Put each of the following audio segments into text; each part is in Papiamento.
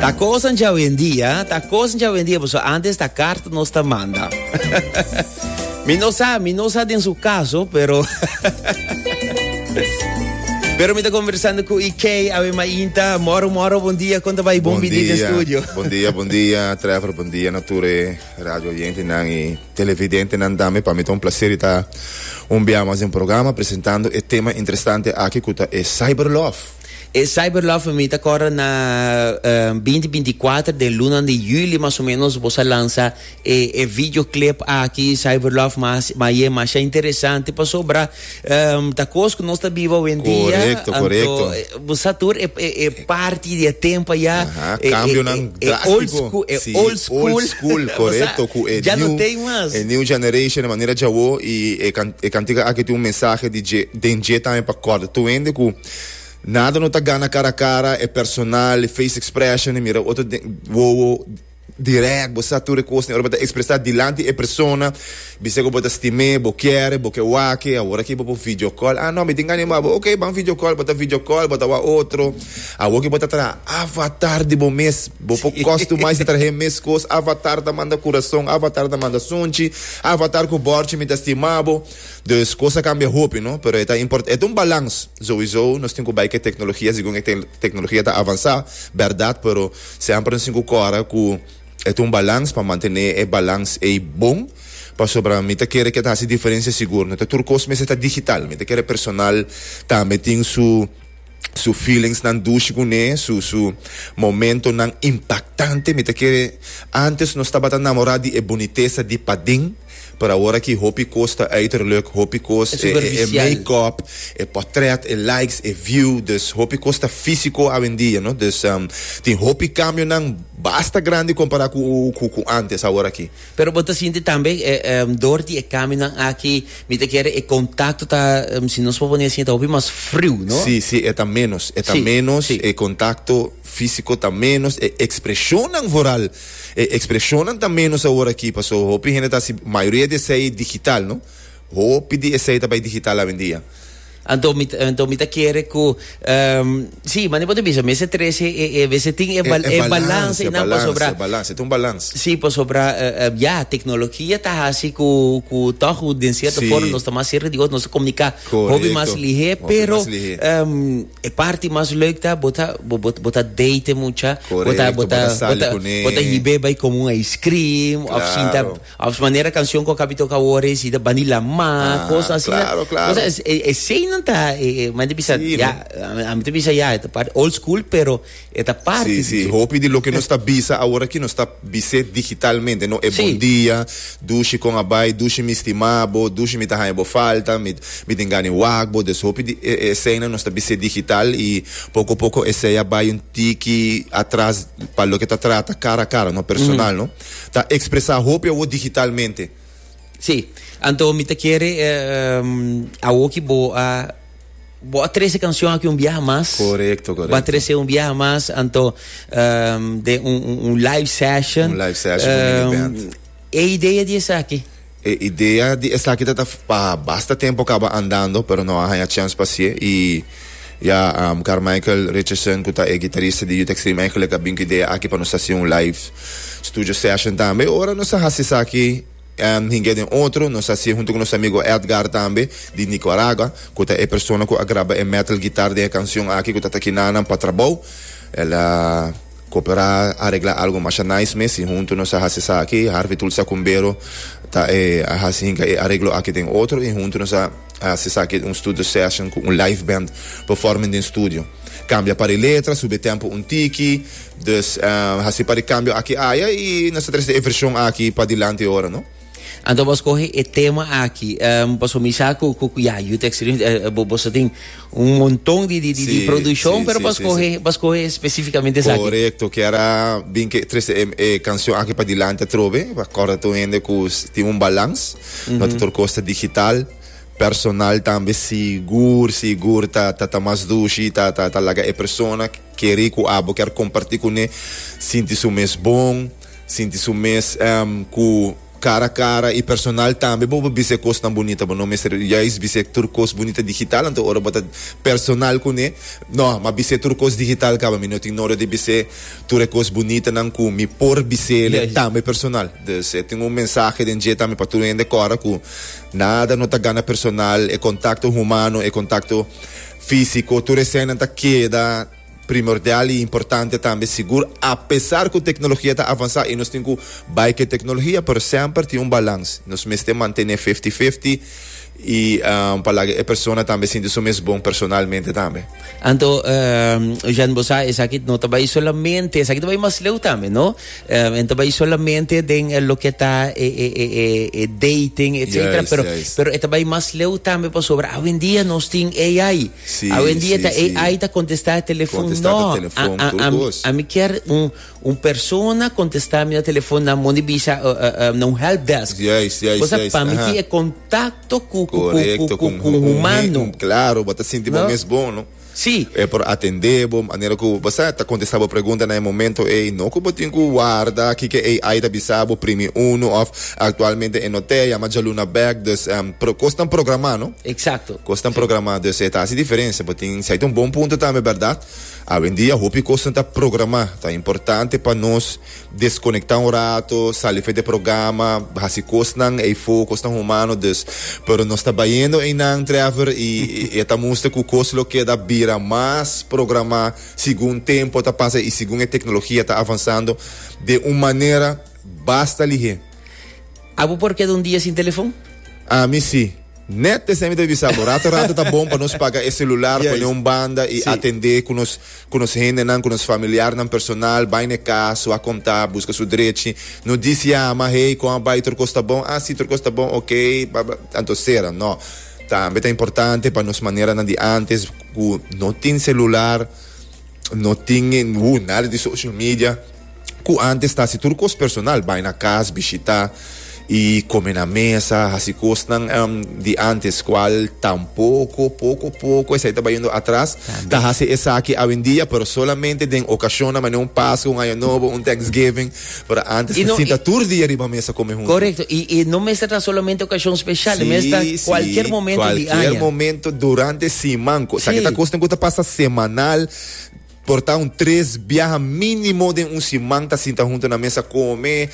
Ta kosan dja wendia, ta kosan dja wendia, boso antes ta kart nos ta manda. mi no sa, mi no sa den su kaso, pero... Pero mi ta conversando ku IK, awe ma inta, moro moro, bon dia, konta bai bon bidi den studio. Bon dia, bon dia, Trevor, bon dia, nature, radio oyente nan i televidente nan dame, pa mi ta un placer ta un bia mas en programa presentando e tema interesante aki ku ta e cyberlove. E Cyberlove pa mi ta corda na binti binti kuater den lunan di juli mas o menos bosa lansa e e video clip aki Cyberlove ma ma ye masha interesante pasobra ta cos cu nos ta biba awendia Correcto, correcto. anto bo sa tur e e e parti di e tempo ya Aha, e- e- cambionan e- e old drástico. school e Sí, old school old school, Bo sa, correcto, cu e ya no new- tem mas e new generation, e manera djawo y e can- e cantica aki tin un mensahe di dje, den dje tambe pa corda tur hende cu. Nada no ta gana cara a cara, e personal, e face expression, e mira otro den wowo, direct, bo sa tur e cos, ora bo ta expresa dilanti e persona, bisa cu bo ta stim'e, bo kere, bo ke wake, awor aki bo por video call, ah no, mi tin anima bo, ok, ban video call, bo ta video call, bo ta wak otro, awor ki bo ta traha avatar di bo mes, bo por customize y traha e mes cos, avatar ta manda curason, avatar ta manda sunchi, avatar cu borchi mi ta stima bo. Dus cos a cambia hopi no, pero e ta import, e ta un balans. Souiso nos tin cu bay cu e tecnologia segun e tecnologia ta avansa, berdad, pero semper nos tin cu cora cu e ta un balans pa mantene e balans ey bon, pasobra mi ta kere cu e ta haci diferencia sigur. No ta tur cos mester ta digital, mi ta kere personal tambe tin su. Su feelings nan dushi cu ne, su su momento nan impactante. Mi ta kere, antes nos tabata namora di e bonitesa di paden, pero awor aki hopi cos ta uiterlijk, hopi cos e e make up, e potret, e likes, e view, dus hopi cos ta fisico awendia, no. Dus tin hopi cambionan basta grandi compara cu cu antes awor aki. Pero bo ta sinti tambe dor di e kambionan aki, mi ta kere e kontakto ta, si nos por pone asi, ta hopi mas friu, no? Sí, sí, e ta ménos, e ta ménos, e kontakto físiko ta ménos, e ekspreshonnan voral, e ekspreshonnan ta ménos awor aki, paso hopi hende ta hasi, mayoria di esei digital, no? Hopi di esei ta bai digital awendia. Anto mi anto mi ta kere ku um, si, mane por ta bisa mester trece e e vese tin e, bal, e, e, e balans e nan pasobra. E balans, e un balans. Si, pasobra uh, uh, ya teknologia ta hasi ku ku tog den sierto si. forma nos ta mas serka di otro, nos ta komunika hopi mas lihé, pero um, e parti mas leuk ta bo ta bo bo bo ta date mucha, bo ta bo ta bo ta bo ta hibe bai komu un ice cream of sinta Of manera cancion cu a cabe toca awor e si ta bandi lama, cos asina. Claro, claro. Cosa es, e, eseinan ta, e, e, man te bisa, Sí, ya, no. a mi te bisa ya, e ta parte old school, pero e ta parte Sí, di sí. dje. Hopi di loke nos ta bisa awor aki nos ta bis'é digitalmente, no e Sí. bon dia, dushi con a bai, dushi mi stima bo, dushi mi ta haña bo falta, mi, mi tin gana e wak bo. Dus hopi di e, e eseinan nos ta bis'é digital y poco poco esei a bai un tiki atras pa loke ta trata cara a cara, no, personal, no. ta expresa hopi awo digitalmente. Sí, anto mi ta kere awo ki bo a bo a trese cancion aki un biaha mas. Correcto, correcto. Bo a trese un biaha mas, anto den un live session. Un live session cu Mini Band. E idea di esaki. E idea di esaki ta ta pa basta tempo kaba andando, pero no a haña chèns pa sié. I ya Carmichael Richardson ku ta e gitarista di Youth Extreme eigenlijk a bin ku idea aki pa nos hasi un live studio session tambe. Ora nos a hasi esaki hinga den otro, nos a hasié huntu ku nos amigo Edgar tambe di Nicaragua, ku ta e persona ku a graba e metal guitar den e canción aki ku ta ta kina nan pa trabou. El a. Cooperá a regla algo masha nice mes si hunto nos a haci esaki. Harvey Tulsi a cumbero ta e a haci hinca e areglo aki den otro y hunto nos a haci esaki un studio session cu un live band performing den studio. Cambia pa di letra, subi e tempo un tiki. Dus haci pa di cambio aki aya y nos ta trece e version aki pa dilanti ora, no. Anto bo a scoge e tema aki, um, pasobra mi sa cu, cu, cu ya, Youth Experience, eh, bo, boso tin un monton di, di, di, di Sí, produccion, sí, pero sí, bo a sí, scoge, sí. bo a scoge específicamente esaki. Correcto, kiera bin ke trece em e cancion aki pa dilanti atrobe, pa corda tur hende cu s- tin un balans, no ta tur cos ta digital, personal tambe sigur, sigur ta ta ta mas dushi, ta ta ta laga e persona Kere ku abo ker kompartí kuné sinti su mes bon, sinti su mes ku kara kara i personal tambe. Bo por bisa e kosnan bunita, bo no mester yais bisa e tur kos bunita digital anto ora bo ta personal kuné. No, m'a bis'é tur kos digital kaba, mi no tin nodig di bis'é tur e kos bunitanan ku mi por bis'el tambe personal. Dus e tin un mensahe den dje tambe pa tur hende kòrda ku nada no ta gana personal, e kontakto humano, e kontakto. Físiko, tur eseinan ta keda primordial i importante tambe. Sigur, apesar ku teknologia ta avansá i nos tin ku bai ku e teknologia, pero semper tin un balans. Nos mester mantené fifti fifti i pa laga e persona tambe sinti su mes bon personalmente tambe. Anto, Jean, bo sa esaki no ta bai solamente, esaki ta bai mas leu tambe, no? Um, en ta bay solamente den eh, lo que está eh, eh, eh, eh, eh dating, etcétera. Juist, pero, juist. pero está bay más leu también para sobra. Hoy en día nos tiene AI. Sí, Hoy en día sí, ta sí. AI está contestar el teléfono. Contestar no, el teléfono, a, a, a, mi, a mi quiere un, un persona contestar mi teléfono na moni bisa uh, uh, uh, na un help desk. Juist, juist, Cosa juist. para mí tiene contacto con, con, con, con, con, con humano. Claro, para sentir no? mes bom, no? Sí, e por atendé bo manera ku bo pa sa. E ta kontestá bo pregunta na e momento ei. No ku bo tin ku warda kiko ei ai ta bisa bo primi unu òf aktualmente e no te a yama djaluna bèk. Dus pro kos tan programá no. Eksakto. Kos tan programá. Dus e ta hasi diferensia. Bo tin si ai ta un bon punto tambe bèrdat. Awendia hopi kosnan ta programá. Ta importante pa nos. Desconecta un rato, sali fe d'e programa, haci cosnan ey fo, cosnan humano dus. Pero nos ta bayendo eynan, Trevor, y e ta muster cu cos lo keda bira mas programa segun tempo ta pasa y segun e tecnologia ta avanzando de un manera basta lihé. A bo por keda un dia sin telefon? Ami si. Nèt esei mi ta bisa bo. Rato rato ta bon pa nos paga e selular, pone un banda i atendé ku nos ku nos hendenan, ku nos familiarnan personal, bai na e kas, su a kontá, buska su drechi. No di si ama, Hei, kon a bai? Tur kos ta bon? Ah, si, tur kos ta bon. Okei, bla, bla. Anto sera. No. Tambe ta importante pa nos maneranan di ántes ku no tin selular. No tin ningu nada di social media ku antes ta hasi tur kos personal, bai na kas, bishitá i kome na mesa, hasi kosnan di antes kual tampoko poko poko esei ta bai yendo atras. Ta hasi esaki awendia pero solamente den okashonnan manera un Paskua, un Aña Nobo, un Thanksgiving. Pero antes I no, sinta i, tur dia riba mesa come huntu. Correcto. I, i no mester ta solamente ocasion special. Si, mester si, cualquier momento cualquier di aña. momento durante siman. Si. Sa ki ta cosnan cu ta pasa semanal. Por ta un tres biaha minimo den un siman ta sinta huntu na mesa come.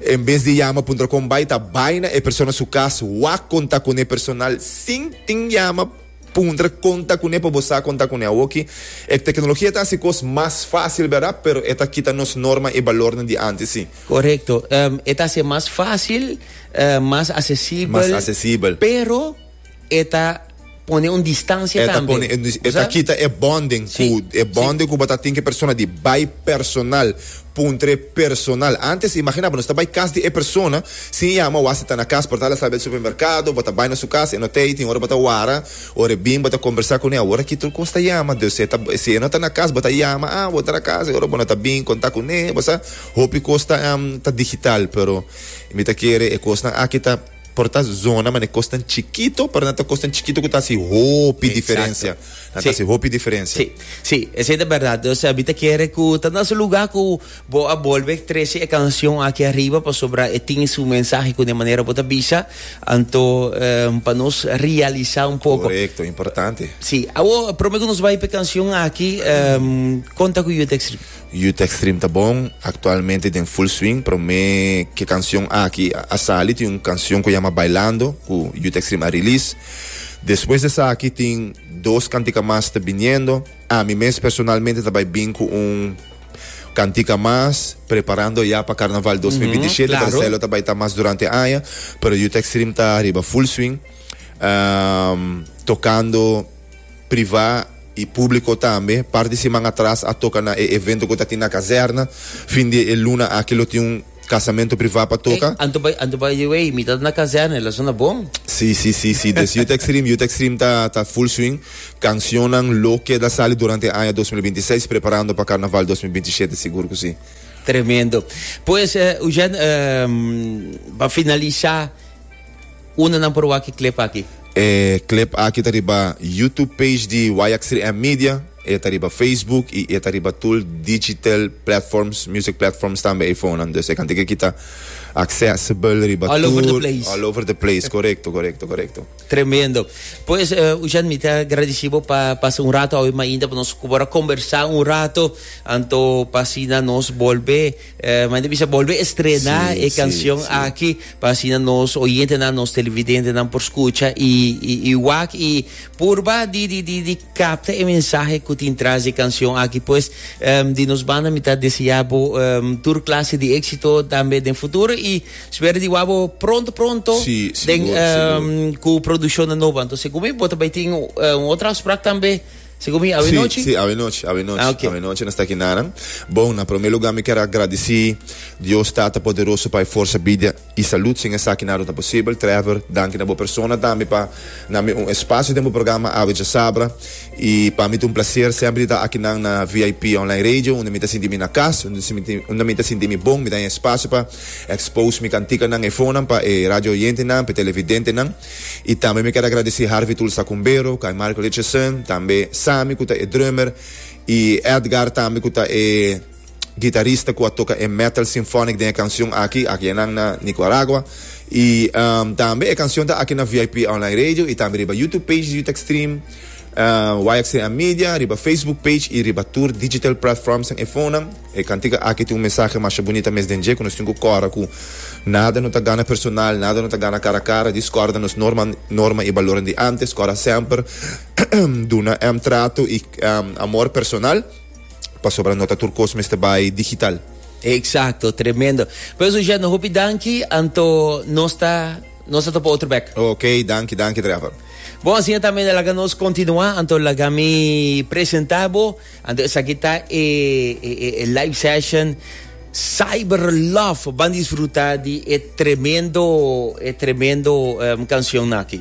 En bes di yama puntra con bay ta bay na e persona su cas wak con ta cune personal sin tin yama. Puntra kon ta kuné pa bo sa kon ta kuné awoki. E teknologia ta hasi kos mas fásil bera, pero e ta kita nos norma i balornan di antes sí. Korekto. E ta hasi e mas fásil, mas asesibel. Mas asesibel. Pero e ta pone un distansia tambe. E ta pone un distansia, e ta kita e bonding ku, e bonding ku bo ta tin ku e persona di bai personal. Puntre personal. Antes, imaginá bo, nos ta bai kas di e persona, sin yama, wak si ta na kas, por tal asal bel supermerkado, bo ta bai na su kas, e no ta ei, tin ora bo ta wara, ora e bin, bo ta kombersá kune, awor aki tur kos ta yama, dus e ta, si e no ta na kas, bo ta yama, ah, bo ta na kas, e ora bo no ta bin kontá kune, bo sa, hopi kos ta, ta digital, pero mi ta kere e kosnan aki ta. Por ta zona mane kosnan chikito, pero nan ta kosnan chikito ku ta hasi hopi diferensia. Nan ta hasi hopi diferensia. Sí, sí, esei ta bèrdat. Dus mi ta kere ku ta na su lugá ku bo a bolbe trese e kanshon aki ariba pasobra e tin su mensahe ku den manera bo ta bisa. Anto pa nos realisá un poko. Korekto, importante. Sí. Awor, promé ku nos bai pa e kanshon aki, konta ku yu e tèkst riba. Youth Extreme ta bon, actualmente den full swing, prome ke cancion aki a sali tin un cancion cu yama Bailando cu Youth Extreme a release, despues di esaki tin dos cantica mas ta biniendo, ami mes personalmente ta bay bin cu un cantica mas, preparando ya pa Carnaval dos mil binti shete, Marcelo ta bay ta mas durante aña, pero Youth Extreme ta riba full swing, tocando. privá i públiko tambe. Parti siman atras a toka na e evento ku ta tin na kazèrna. Fin di e luna aki lo tin un kasamentu privá pa toka. Anto bai, anto bai di wei, mi ta na kazèrna, el a sona bon. Sí, sí, sí, sí. Des Youth Extreme, Youth Extreme ta ta full swing. Kansionnan lo keda sali durante e aña dos mil binti seis, preparando pa karnaval dos mil binti shete, sigur ku sí. Tremendo. Pues, Eugen, pa finalisá. Unda nan por wak e clip aki? E clip aki ta riba YouTube page di YX3M Media, e ta riba Facebook y e ta riba tul digital platforms, music platforms tambe iPhonenan. Dus e kante ke kita accessible riba tur. All over the place. All over the place, korekto, korekto, korekto. Tremendo. Pues, Uchan, mi ta agradeci bo pa pasa un rato awe mainta pa nos ku por a kombersá un rato, anto pa asina nos bolbe. Eh, manda bisa bolbe estrena sí, e canción sí, sí. aquí para así nos oyentenan, nos televidentenan por escucha y, y, y wak y purba di, di, di, di capta el mensaje que tiene tras de canción aquí pues um, di nos banda mitad deseabo um, tur clase de éxito también en futuro y espero di wabo pronto pronto sí, den, seguro, um, seguro. cu producción de nueva entonces como bota bij ting uh, otra afspraak también Si cu mi, awe nochi? Sí, awe nochi, awe nochi, ah, okay. awe nochi nos aquí nanan. Bon, na primer lugar mi quiero agradecer Dios Tata Poderoso para fuerza, vida y salud. Sin esaki nada no posible. Trevor, danki na bo persona también para na mi un espacio den bo programa Awe Ya Sabra. Y para mi un placer siempre estar aquí nan na VIP Online Radio, donde mi te sinti mi na casa, donde mi te sinti mi bon, mi ta en espacio para expose mi cantica nan, efonan para e radio oyente nan, para televidente nan. I tambe mi ker a gradesí Harvey Tulsa Cumbero, cu a e Mark Richardson, tambe Sammy cu ta e drummer, i Edgar tambe cu ta e guitarista cu a toca e metal symphonic den e cancion aki, aki enan na Nicuaragua. I tambe e cancion ta aki na VIP Online Radio i tambe riba YouTube page di Utrecht Stream, YXTM Media, riba Facebook page i riba tur digital platformsnan e fonenan. E cantica aki tin un mensahe masha bunita mes den dje cu nos tin cu cora cu nada no ta gana personal, nada no ta gana cara a cara, discorda nos norma, norma y baloren di antes, cora semper duna em trato y em amor personal pasobra no ta tur cos mester bay digital. Exacto, tremendo. Pues Eugène, hopi danki, anto nos ta nos ta topa otro bek. Ok, danki, danki Trevor. Bon, asina ta men laga nos continua, anto laga mi presenta bo. Anto esaki ta e live session Cyber Love. Ban disfruta di e tremendo, e tremendo cancion aki.